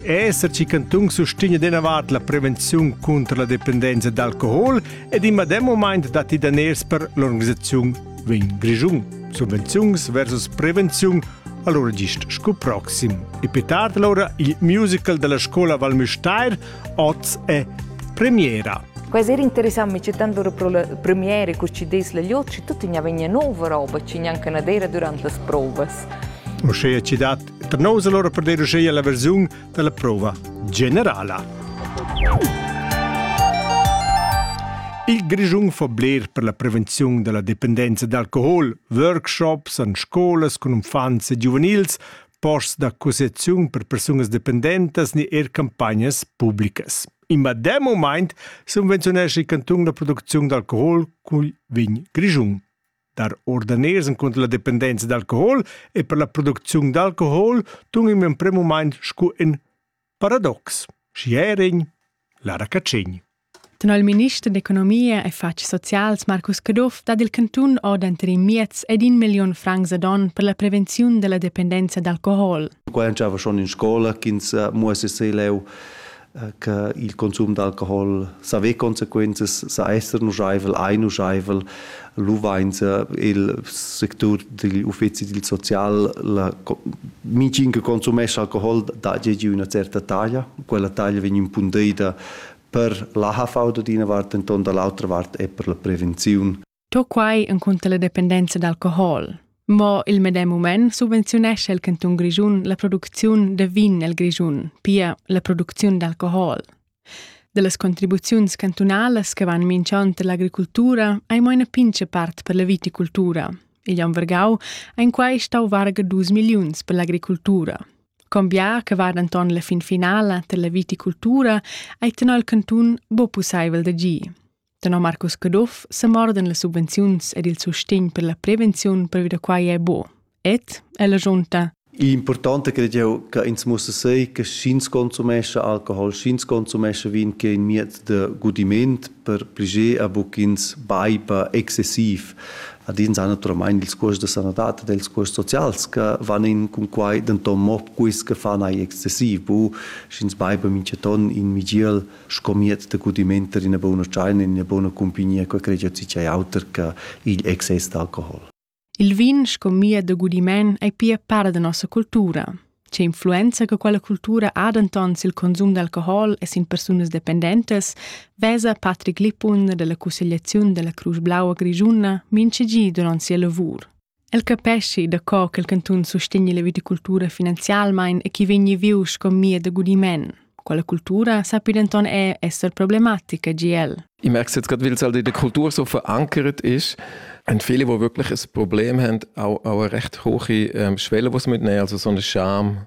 Esser chi cantun sustegna deinavart la prevenziun cunter la dependenza d'alcohol ed in medem moment datti daners per l'organisaziun vegn Grischun. Subvenziuns versus prevenziun allora gist sco proxim. E più tardi allora il musical della scuola Val Müstair oz è premiera. Quasi interessammi c'è tanto premiere che ci des la liotci, tutti ne vegna nuova roba, ci neanche una dera durante le prove. O scegliere ci dat per nous allora per deruscheir la versiun della prova generala. Il Grischun fa bler per la prevenzione della dipendenza d'alcohol, workshops an scolas con uffants e giuvenils, posts d'accusazione per persunas dependentas ni er campagnas pubblicas. In medem moment subvenziunesce il canton la produzione d'alcohol cui vin Grischun. Dar ordaners encunter la dependenza d'alcohol e per la producziun d'alcohol tun in emprem moment sco in paradox. Schiering, Lara Cacin. Tenor il minister d'economia e fatgs socials Marcus Caduff dat il cantun ordenter in miez ed in million francs ad on per la prevenziun della dependenza d'alcohol. Qua entschava schon in scola ch'ins muossi sei leu che il consum d'alcohol sa ve consequenzas sa esser nuschaivel, ei nuschaivel, lu vainsa il sectur digl uffeci dil social la micin che consumescha alcohol da gegi üna certa taglia, quella taglia vegn impundeida per la HV da d'ina vart, enton dall'autra vart è per la prevenziun To quai encunter la dependenza d'alcohol. Mo il medem mument subvenziunescha il cantun Grischun la producziun da vin nel Grischun, pia la producziun d'alcohol. Dallas contribuziuns cantunalas che van minchant l'agricultura hai mo ina pincha part per la viticultura. Igl on Vergau ein quai stau varga dus milliuns per l'agricultura. Combià che va denton la fin finala per la viticultura ei tenor il cantun bo pusseivel da gi. Tenor Marcus Caduff semuordan las subvenziuns ed il sustegn per la prevenziun previ da quai è buo. Ed è l'agiunta L'importante credo eu che ins muss sehen, che sch'ins consumesce Alkohol, sch'ins consumesce Vin che in mied de gudiment per pliger a buc ins baipa excessiv. Ad ins ha naturalmein ils cuosts de sanadad ed els cuosts socials che van in cun quai denton mo quis che fan ei excessiv. Bu, sch'ins baipa mincha ton in migiel sco miez da gudiment per ina buona tschaina, ina buona cumpagnia, che cregia cicei auter che igl excess d'alcohol. Il vin sco mia da gudiment è pia part da nossa cultura. C'è influenza che quella cultura ha denton sil consum d'alcohol e sin persunas dependentas, vesa Patrick Lippun della Consigliazione della Cruz Blaua Grigiuna mince gi durant sia lavur. El capeschi da co ch'el cantun sustegni la viticultura finanzialmein e chi vegni viu sco mia da gudiment. Quella cultura sappi denton er esser problematica GL. Ich merke jetzt gerade, weil es halt in der Kultur so verankert ist, haben viele, die wirklich ein Problem haben, auch, auch eine recht hohe ähm, Schwelle, die sie mitnehmen, also so eine Scham.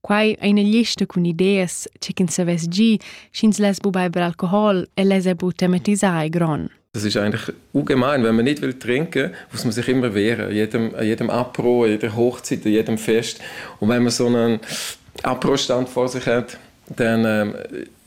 Quai è ina lista cun ideas ch'ins avess gì sch'ins less bu beiber alcohol e less bu tematisar il gron. Das ist eigentlich ungemein, wenn man nicht will trinken muss man sich immer wehren, an jedem, an jedem Apro, an jeder Hochzeit, an jedem Fest. Und wenn man so einen Apro-Stand vor sich hat, dann ähm,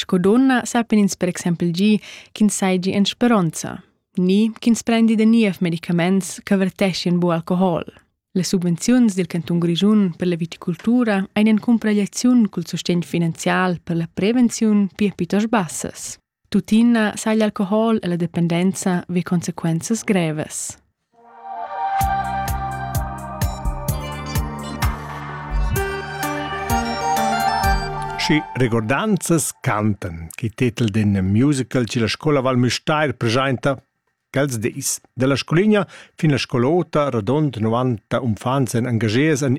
Sco donna sappan ins per exempel gi ch'ins seigi en speronza, ni ch'ins prendi da niev medicaments che verteschien bu alcohol. Las subvenziuns dil cantun Grischun per la viticultura ein en cumpragliaziun cul sustegn finanzial per la prevenziun pia piuttost bassas. Tuttina sai l'alcohol e la dependenza ve consequenzas grevas. Schi regordanzas cantan che tetel d'in musical che la scola Val Müstair preschainta quels dis. Da la scoligna fin la scol'ota radond 90 umfants èn engagiers en